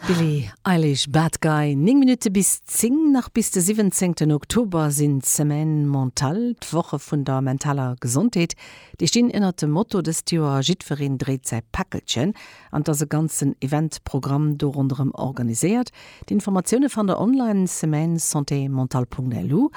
Billie Eilish, Bad Guy, 9 Minutte bis 10. Nach bis de 17 Oktober sinn d'Semaines Mentales, d'Woche vun der mentaler Gesondheet. Déi stinn ënnert dem Motto dëst Joer Jiddwereen dréit säi Päckelchen an et ass e ganzen Eventprogramm do ronderëm organiséiert. D'Informatioune fannt der online, semaines-santé-mentale.lu.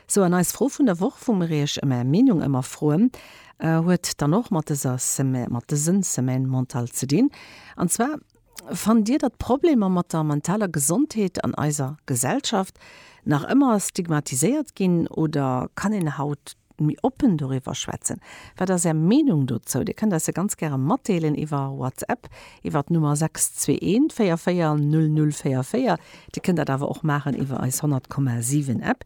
Sou, an eis Fro vun der Woch, wou mir iech ëm är Meenung ëmmer froen, Huet dann och mat dëser Semaine, mat dësen Semaine mentale ze dinn. An zwar, Fannt Dir, datt d'Problemer mat der mentaler Gesondheet an eiser Gesellschaft nach ëmmer stigmatiséiert ginn oder kann een haut méi oppen doriwwer schwätzen? Wat ass Är Meenung dozou? Dir kënnt eis se ganz gäre matdeelen iwwer WhatsApp iwwer d'Nummer 621 44 00 44. Dir kënnt dat awer och maachen iwwer eis 100,7 App.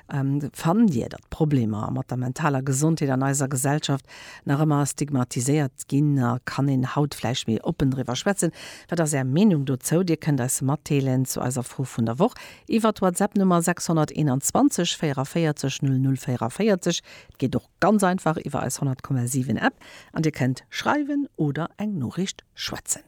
Fannt Dir, datt d'Problemer mat der mentaler Gesondheet an eiser Gesellschaft nach ëmmer stigmatiséiert ginn a kann een haut vläicht méi oppen driwwer schwätzen? Wat ass Är Meenung dozou? Dir kënnt eis matdeelen zu eiser Fro vun der Woch iwwer d'Whatsapp Nummer 621 44 00 44. Et geet och ganz einfach iwwer eis 100,7 App an Dir kënnt schreiwen oder eng Noriicht schwätzen.